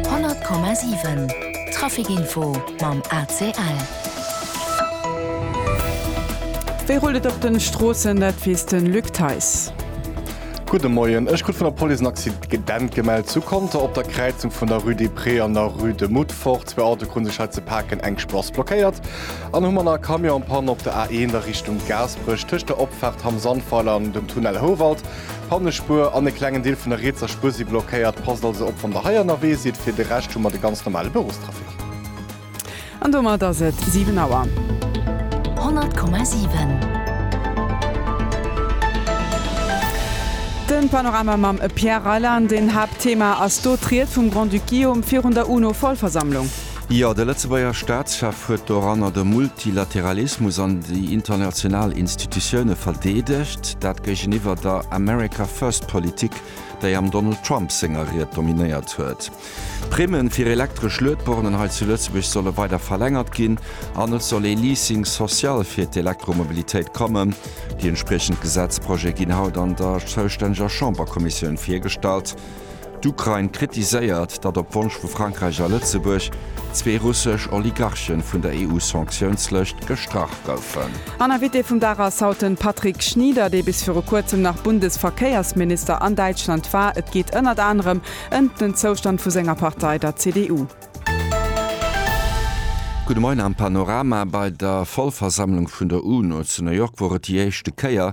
100,7 Trafic Info mam ACL. Wéi rullt et op den Stroossen, dat weess den Luc Theis. Gudde Moien, ech krut vun der Police en Accident gemellt zu Conter op der Kräizung vun der Rue des Prés an der Rue de Moutfort. Zwee Autoe kruten sech hei ze paken, eng Spross blockéiert an hu manner. Camion en Panne op der A1 a Richtung Gaasperech tëscht der Opfaart Hamm Sandweiler an dem Tunnel Houwald. Pannespuer an e klengen Deel vun der rietser Spuer si blockéiert. Passt also op wann der hei ënnerwee sidd. Fir de Rescht hu mer de ganz normale Bërostrafic. An domat ass et 7 Auer. 100,7. Den Panorama mam Pierre Reyland. Een Haaptthema ass do d'Ried vum Grand-Duc Guillaume virun der UNO-Vollversammlung. Jo, de Lëtzebuerger Staatschef huet doranner de Multilateralismus an déi international Institutioune verdeedegt. Dat géigeniwwer der America First Politik, déi am Donald Trump senger Ried dominéiert huet. D'Primme fir elektresch Luedbornen hei zu Lëtzebuerg solle weider verlängert ginn an et soll ee Leasing social fir d'Elektromobilitéit kommen. Déi entspriechend Gesetzprojet ginn haut an der zoustänneger Chamberkommissioun virgestallt. D'Ukrain kritiséiert, datt op Wonsch vu Frankräich a Lëtzebuerg zwee russesch Oligarchen vun der EU-Sanktiounslëscht gestrach goufen. An Invité vum Dag ass haut den Patrick Schnieder, dee bis viru kuerzem nach Bundesverkéiersminister an Däitschland war. Et geet ënnert anerem ëmt den Zoustand vu senger Partei, der CDU. Gudde Moien am Panorama. Bei der Vollversammlung vun der UNO zu New York wor et déi éischte Kéier,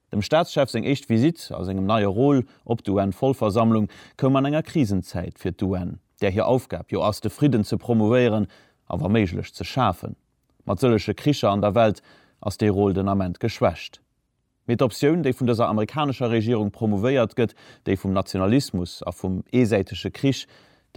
Dem Staatschef seng éischt Visitt a sengem neie Rôle op d'UN-Vollversammlung koum an enger Krisenzäit fir d'UN, där hir Aufgab jo ass de Fridden ze promouvéieren a wa méiglech ze schafen. Mat sëllege Kricher an der Welt ass dee Rôle den Ament geschwächt. Mee d'Optioun, déi vun dëser amerikanescher Regierung promouvéiert gëtt, déi vum Nationalismus a vum eesäitege Krich,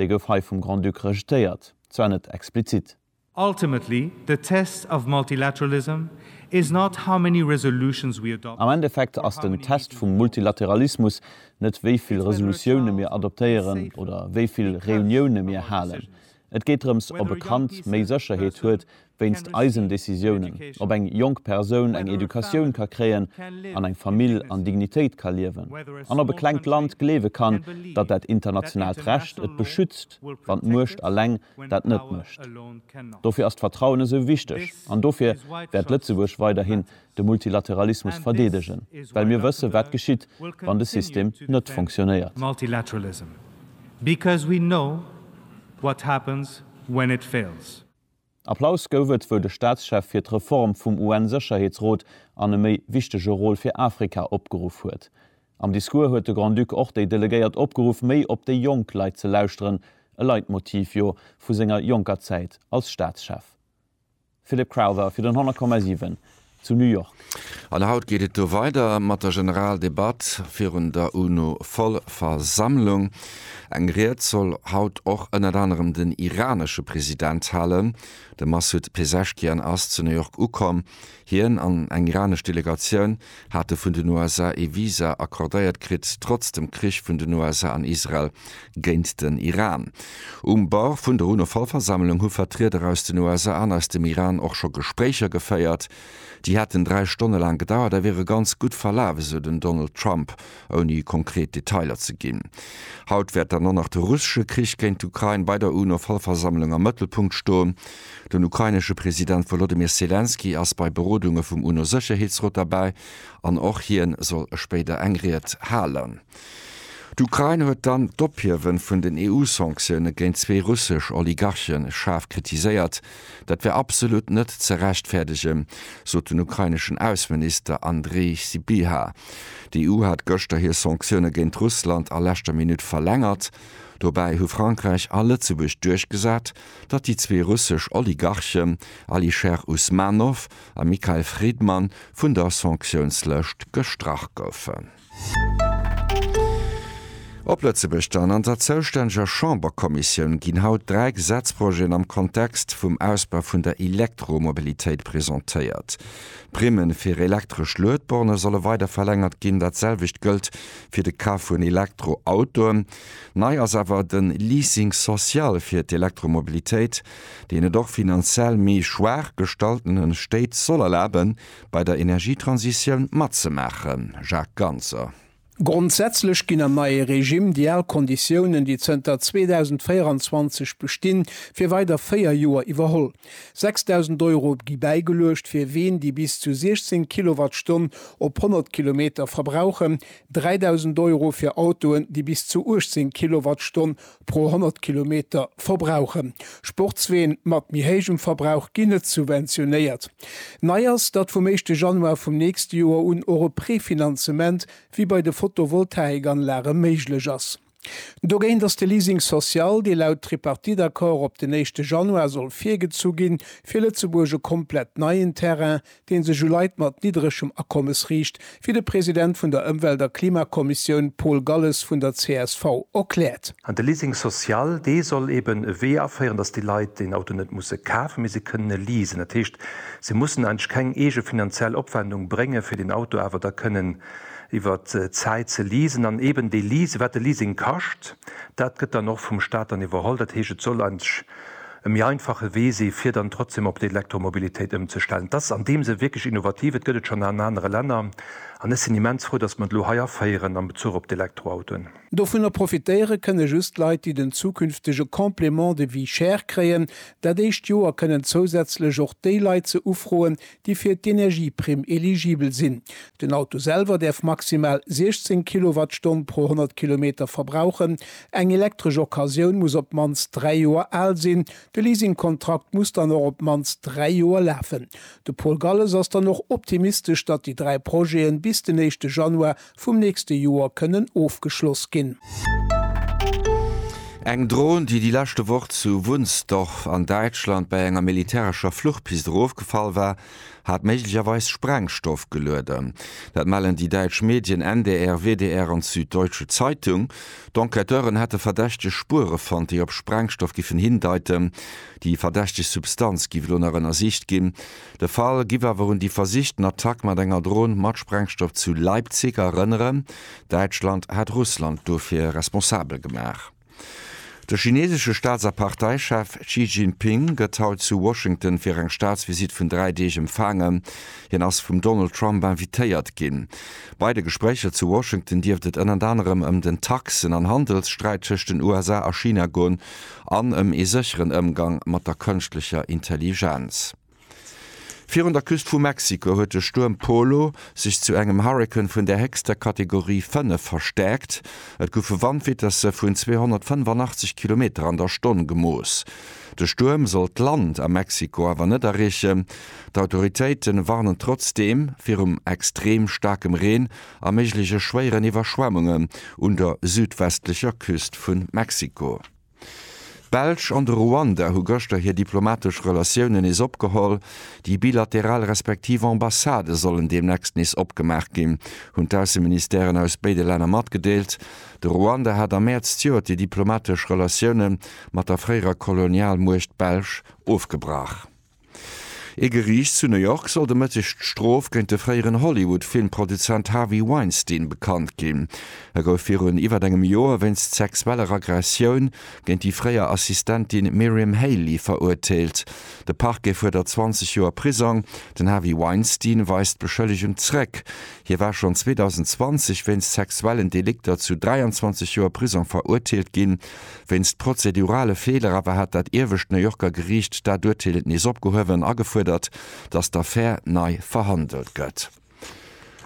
déi gouf hei vum Grand-Duc rejetéiert, zwar net explizit, Ultimately, the test of multilateralism is not how many resolutions we adopt. Am Endeffekt ass den Test vum Multilateralismus net wéi vill Resolutioune mir adoptéieren oder wéi vill Reunioune mir halen. Et geet drëms ob e Kand méi Sécherheet huet wéinst eisen Decisiounen, ob eng jonk Persoun eng Educatioun ka kréien an eng Famill an Dignitéit ka liewen an ob e klengt Land gleewe kann, datt dat internationaalt Recht et beschützt. Respekt, wann d'Muecht eleng dat net mécht. Dofir ass d'Vertrauen esou wichteg an dofir wäert Lëtzebuerg weiderhin de Multilateralismus verdeedegen, well mir wëssen, wat geschitt, wann de System net funktionéiert. Applaus gouf et, wou de Staatschef fir d'Reform vum UN-Sécherheetsrot an e méi wichtege Rôle fir Afrika opgeruff huet. Am Discours huet de Grand-Duc och déi Delegéiert opgeruff, méi op déi jonk Leit ze lauschteren, e Leitmotiv, jo, vu senger jonker Zäit als Staatschef. Philip Crowther fir den 100,7 zu New York. An haut geet et do weider mat der Generaldebatt virun der UNO-Vollversammlung. Eng Ried soll haut och ënnert anerem den iranesche President halen. De Massoud Pezeshkian ass zu New York ukomm. Hien an eng iranesch Delegatioun hate vun den USA ee Visa accordéiert kritt, trotz dem Krich vun den USA an Israel géint den Iran. Um Bord vun der UNO-Vollversammlung hu Vertrieder aus den USA an aus dem Iran och scho Gespréicher geféiert. Déi hätten dräi Stonne laang gedauert a wiere ganz gutt verlaf, esou den Donald Trump, ouni konkret Detailer ze ginn. Haut wäert dann och nach de russesche Krich géint d'Ukrain bei der UNO-Vollversammlung am Mëttelpunkt stoen. Den ukrainesche President Wolodymyr Selenskyj ass bei Berodunge vum UNO-Sécherheetsrot derbäi an och hien soll spéider eng Ried halen. D'Ukrain huet dann d'Ophiewe vun den EU-Sanktioune géint zwee russesch Oligarche schaarf kritiséiert. Dat wär absolut net ze rechtfäerdegen, sot den ukraineschen Ausseminister Andrii Sybiha. D'EU hat gëschter hir Sanktioune géint Russland a leschter Minutt verlängert. Dobäi hu Frankräich a Lëtzebuerg duerchgesat, datt déi zwee russesch Oligarchen Alisher Usmanov a Mikhail Fridman vun der Sanktiounslëscht gestrach goufen. Op Lëtzebuerg dann, An der zoustänneger Chamberkommissioun ginn haut dräi Gesetzprojeten am Kontext vum Ausbau vun der Elektromobilitéit presentéiert. D'Primme fir elektresch Luedborne solle weider verlängert ginn, dat selwecht gëllt fir de Kaf vun Elektroautoen. Nei ass awer de Leasing social fir d'Elektromobilitéit, deen et och finanziell méi schwaach gestalltene Stéit soll erlaben, bei der Energietransitioun matzemaachen? Jacques Ganser. Grondsätzlech ginn am neie Regime déi al Konditiounen, déi zënter 2024 bestinn, fir weider véier Joer iwwerholl. 6.000 Euro gi bäigeluecht, fir ween déi bis zu 16 Kilowattstonn op 100 Kilometer verbrauchen, 3.000 Euro fir Autoen, déi bis zu 18 Kilowattstonn pro 100 Kilometer verbrauchen. Sportsween mat méi héijem Verbrauch ginn net subventionéiert. Nei ass, datt vum éischte Januar vum nächste Joer un och e Prefinanzement wéi bei de Photovoltaik-Anlage méiglech ass. Dogéint ass de Leasing social, dee laut Tripartite-Accord op den éischte Januar soll virgezu ginn, fir Lëtzebuerg e komplett neien Terrain, dee sech u Leit mat nidderegem Akommes riicht, wéi de President vun der Ëmwelt a Klimakommissioun Paul Galles vun der csv erkläert. An de Leasing social, dee soll eeben e Wee aféieren, datt déi Leit den Auto net musse kafen, mee se kënnen e leasen. Dat heescht, se mussen eigentlech keng eege finanziell Opwendung bréngen, fir den Auto awer da kënnen iwwer d'Zäit ze leasen. An eeben dee Leasing, wat de Leasing kascht, dat gëtt dann och vum Staat dann iwwerholl. Dat heescht, et soll eigentlech e méi einfache Wee si fir dann trotzdeem op d'Elektromobilitéit ëmzestellen. Et ass an deem Sënn wierklech innovativ, et gëtt et schonn an anere Länner an ech sinn immens frou, datt mer et elo hei aféieren am Bezuch op d'Elektroautoen. Dovunner profitéiere kënne just Leit, déi den zukünftege Complément de vie cher kréien. Dat éischt Joer kënnen zousätzlech och déi Leit se ufroen, déi fir d'Energieprimm eligibel sinn. Den Auto selwer däerf maximal 16 Kilowattstonn pro 100 Kilometer verbrauchen. Eng elektresch Occasioun muss op d'mannst dräi Joer al sinn. De Leasingkontrakt muss dann och op d'mannst dräi Joer lafen. De Paul Galles ass dann och optimistesch, datt déi dräi Projete bis den éischte Januar vum nächste Joer kënnen ofgeschloss ginn. Eng Dron, déi déi leschte Woch zu Wunstorf an Däitschland bei enger militärescher Fluchpist erofgefall war, hat méiglecherweis Sprengstoff gelueden. Dat mellen déi däitsch Medien NDR, WDR an d'Süddeutsche Zeitung. D'Enquêteuren hätte verdächteg Spuere fonnt, déi op Sprengstoff giffen hindeiten. Déi verdächteg Substanz giff elo nach ënnersicht ginn. De Fall giff awer un déi versichten Attack mat enger Dron mat Sprengstoff zu Leipzig erënneren. Däitschland hat Russland dofir responsabel gemaach. De chineesesche Staats a Parteichef Xi Jinping gëtt haut zu Washington fir eng Staatsvisitt vun dräi Deeg empfaangen. Hien ass vum Donald Trump invitéiert ginn. Bei de Gespréicher zu Washington dierft et ënnert anerem ëm den Taxen an Handelssträit tëscht den USA a China goen, an ëm ee sécheren Ëmgang mat der kënschtlecher Intelligenz. Virun der Küst vu Mexiko huet de Stuerm Polo sech zu engem Hurrikan vun der héchster Kategorie 5 verstäerkt. Et goufe Wandvitesse vun 285 Kilometer an der Stonn gemooss. De Stuerm soll d'Land a Mexiko awer net erreechen. D'Autoritéite warnen trotzdeem virum extrem staarkem Reen a méigleche schwéieren Iwwerschwemmungen un der südwestlecher Küst vu Mexiko. D'Belsch an de Ruanda hu gëschter hir diplomatesch Relatiounen nees opgeholl. Déi bilateral respektiv Ambassadë sollen deemnächst nees opgemaach ginn, hunn d'Ausseministèren aus béide Länner matgedeelt. De Ruanda hat am Mäerz d'Joert déi diplomatesch Relatioune mat der fréierer Kolonialmuecht Belsch ofgebrach. Ee Geriicht zu New York soll de Mëtteg d'Strof géint de fréieren Hollywood-Filmproduzent Harvey Weinstein bekannt ginn. E gouf virun iwwert engem Joer wéinst sexueller Aggressioun géint déi fréier Assistentin Miriam Haley verurteelt. De Parquet fuerdert 20 Joer Prisong. Den Harvey Weinstein weist d'Beschëllegung zréck. Hie war schonn 2020 wéinst sexuellen Delikter zu 23 Joer Prisong verurteelt ginn. Wéinst prozedurale Feeler awer hat dat iewescht New Yorker Geriicht dat Urteel nees opgehuewen a gefuerdert, datt d'Affär nei verhandelt gëtt.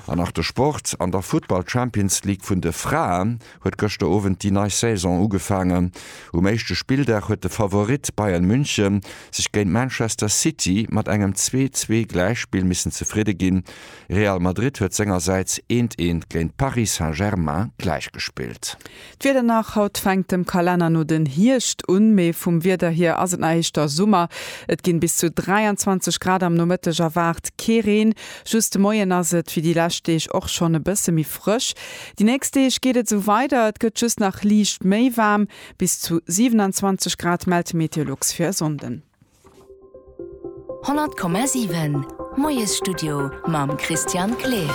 An nach de Sport, An der Futtball Champions League vun de Fraen huet gëschter Owend déi nei Saison ugefaangen. Um éischte Spilldag huet de Favorit Bayern München sech géint Manchester City mat engem 'Zwee-Zwee' Gläichspill missen zefridde ginn. Real Madrid huet sengersäits eent eent géint Paris Saint-Germain gläichgespillt. D'Wieder nach, Haut fänkt dem Kalenner no den Hierscht un, mee vum Wieder hier ass et nach éischter Summer. Et ginn bis zu 23 Grad am Nomëtteg erwaart, kee Reen. Just de Moien ass et wéi déi lescht Deeg och schonn e bësse méi frësch. Déi nächst Deeg geet et esou weider, et gëtt just nach liicht méi waarm, bis zu 27 Grad mellt d'Meteolux fir e Sonnden. 100,7 Moiesstudio mam Christian Kleer.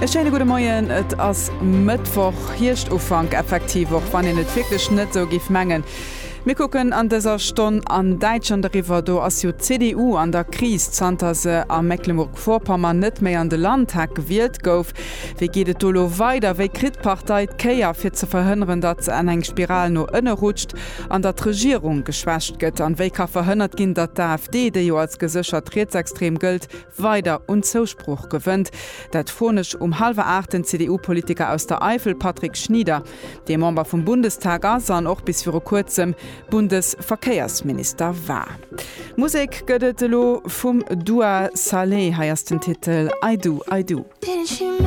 E schéine gudde Moien. Et ass Mëttwoch, Hierscht-Ufank effektiv, och wann een et wierklech net esou géif mengen. Mir kucken an dëser Stonn an Däitschland eriwwer. Do ass jo d'CDU an der Kris, zanter se a Mecklemburg-Vorpommern net méi an de Landtag gewielt gouf. Wéi geet et do elo weider? Wéi kritt d'Partei d'Kéier, fir ze verhënneren, datt se an eng Spiral no ënne rutscht? An datt d'Regierung geschwächt gëtt? An wéi ka verhënnert ginn, datt d'AfD, déi jo als geséchert rietsextrem gëllt, weider un Zousproch gewënnt? Dat froen ech um hallwer aacht den CDU-Politiker aus der Eifel Patrick Schnieder, dee Member vum Bundestag ass an och bis viru kuerzem Bundesverkéiersminister war. Musek gëtt et elo vum Dua Saleh. Hei ass den Titel I Do, I Do.